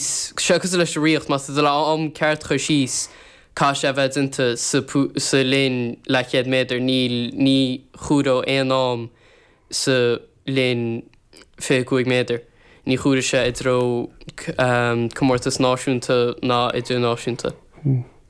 Seo cosúil leis an ritheacht, más ag dul am ceart a chur síos caithfidh sé a bheith déanta sa linn leathchéad méadar, níl, ní chomhaireodh aon am sa linn fiche cúig méadar, ní chomhairfeadh sé i dtreo comórtas náisiúnta ná idirnáisiúnta.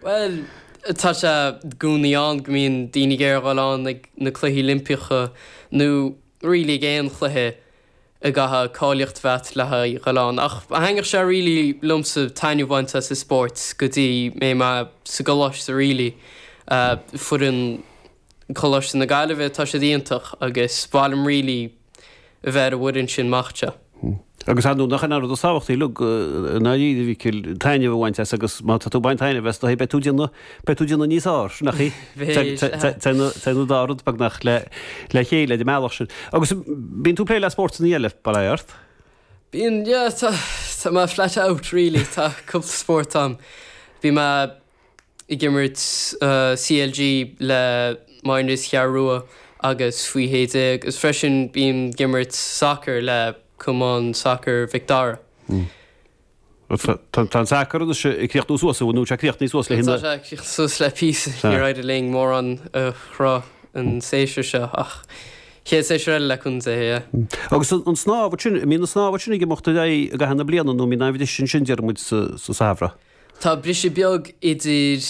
Bhuel, tá sé i gcónaí ann go mbíonn daoine ag iarraidh a dhul ann ag na Cluichí Oilimpeacha, nó really ag aon chluiche a gcaithfeadh cáilíocht a bheith agat le haghaidh a dhul ann. Ach thaitneodh sé really liomsa taitneamh a bhaint as an spórt go dtí mbeidh mé sa gcoláiste really. Foireann Choláiste na Gaillimhe, tá siad iontach agus ba mhaith liom really a bheith ar an bhfoireann sin mac de. Agus ar ndú' nach in é an rud is tábhachtaí uilig i ndáiríre, a Mhicil, taitneamh a bhaint as agus má tá tú ag baint taitneamh as is dóigh beidh tú ag déanamh, beidh tú ag déanamh níos fearr ansin, nach ea? Bheadh, aye. Téann an dá rud beagnach le chéile ar an mbealach sin. Agus bíonn tú ag plé le spórtanna eile, bail ó Dhia ort? Bíonn, yeah, tá, tá mé flat out really, tá cúpla spórt ann. Bhí mé ag imirt CLG le minors an Cheathrú Rua agus faoi shé déag agus freisin bím ag imirt sacair le Cumann Sacair Mhic Dara. Tá an sacar anois ag críochnú suas, nó tá sé críochnaithe suas le hinne? Tá sé críochnaithe suas le píosa, níor éirigh linn mórán a chruthú an séasúr seo ach chéad séasúr eile le cúnamh Dé, yeah. Agus an snámh ansin, an mbíonn an snámh ansin ag imeacht ar aghaidh i gcaitheamh na bliana nó an mbíonn aon bhriseadh ansin déarfaidh muid sa samhradh? Tá briseadh beag idir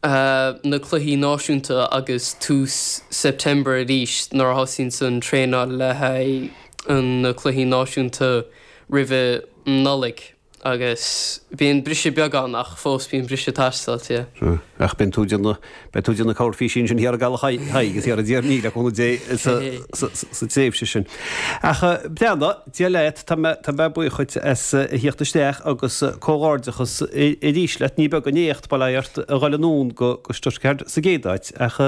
na cluichí náisiúnta agus tús September arís nuair a thosaíonn an traenáil le haghaidh na cluichí náisiúnta roimhe Nollaig agus bíonn briseadh beag ann ach fós bíonn briseadh ag teastáil, yeah. Ach bíonn tú ag déanamh Beidh tú ag déanamh corrphísín ansin thiar i gCaladh Thaidhg is thiar i dTír an Fhia, le cúnamh Dé, sa tréimhse sin. Ach, beannacht Dia leat, tá mé buíoch dhuit as a theacht isteach agus comhghairdeachas arís leat. Ní beag an éacht, bail ó Dhia ort, a dhul anonn go Stuttgart sa gcéad áit, ach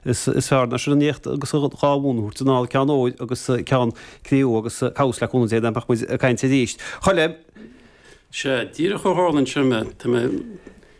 is fearr ná sin an éacht agus dhá bhonn a thabhairt anall, ceann óir agus ceann cré-umha agus cá bhfios, le cúnamh Dé, nach mbeidh muid ag caint arís. Chuile sheans, díreach a tharlaíonn sin, tá mé.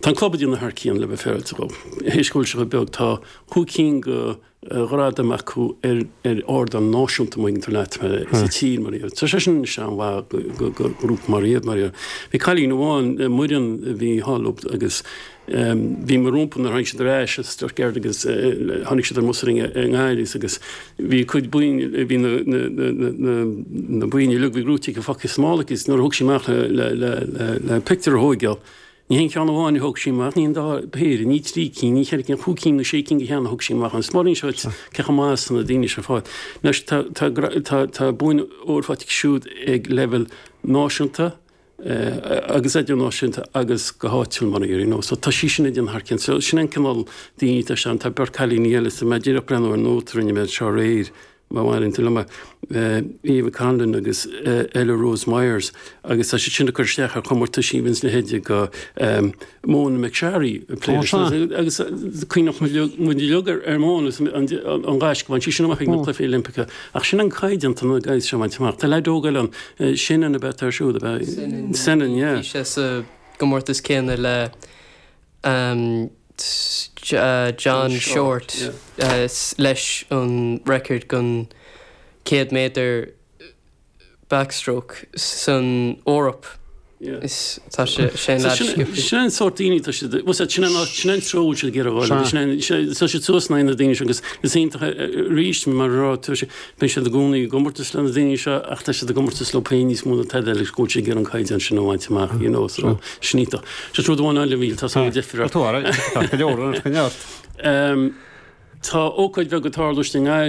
Tá an club ag déanamh thar cionn le bheith féaráilte dhóibh. Théis go bhfuil sé chomh beag, tá cúig cinn de ghradaim acu ar ardán náisiúnta, maíonn tú leat, sa tír, mar a dhéarfá. Tá sé sin an-mhaith do ghrúpa mar iad, mar a dhéarfá. Bhí cailín amháin, Muireann, a bhí thall agus bhí mé rompu nuair a tháinig siad ar ais as Stuttgart agus tháinig siad ar an mbus ar an nGaileys agus bhí a cuid boinn, bhí na boinn uilig, bhí rúitín acu faighte sa mála aici agus nuair a thug sí amach le pictiúr a thógáil, Ní haon cheann amháin a thóg sí amach, ná dhá phéire, ní trí cinn, ní ceithre cinn, cúig cinn nó sé cinn de cheanna a thóg sí amach. Agus mar a d'inis mé dhuit, cé chomh maith is atá na daoine seo ag fáil? Anois, tá, tá, tá, tá boinn óir faighte aici siúd ag leibhéal náisiúnta, eh, agus idirnáisiúnta agus go háitiúil, mar a déarfá, you know. So tá sí sin ag déanamh thar cionn. So sin an cineál daoine atá ann. Tá beirt cailíní eile, so tá mé díreach ag breathnú ar nóta a rinne mé anseo aréir, Má mhaitheann tú dhom, Ava Conlon agus Ella Rose Myers, agus tá siad sin ag cur isteach ar chomórtais faoi bhun seacht déag go raibh Mona McSharry ag plé leis. Agus cuimhníonn muid uilig ar Mona, an gaisce a bhain sí sin amach ag na Cluichí Oilimpeacha. Ach sin an caighdeán atá na guys seo ag baint amach. Tá leaid óg eile ann, Senan ab ea atá air siúd, ab ea? Senan, yeah. Bhí sé sa gcomórtas céanna le John Shortt leis an record den 100 méadar backstroke san Eoraip. Sin an sórt daoine tá siad, bhuel sin an sin an treo atá siad ag iarraidh a dhul, tá siad suas leis na daoine sin agus is iontach arís mar a dúirt tú Bíonn siad i gcónaí i gcomórtas le na daoine seo ach tá siad i gcomórtas leo féin níos mó ná tada eile, go bhfuil siad ag iarraidh an caighdeán sin a bhaint amach, you know, so sin í an dóigh. Just rud amháin eile a Mhichíl, tá so much difir. Tá tú ara, tá go leor, tá go neart. Tá ócáid bheag ag tarlú istigh i nGaillimh.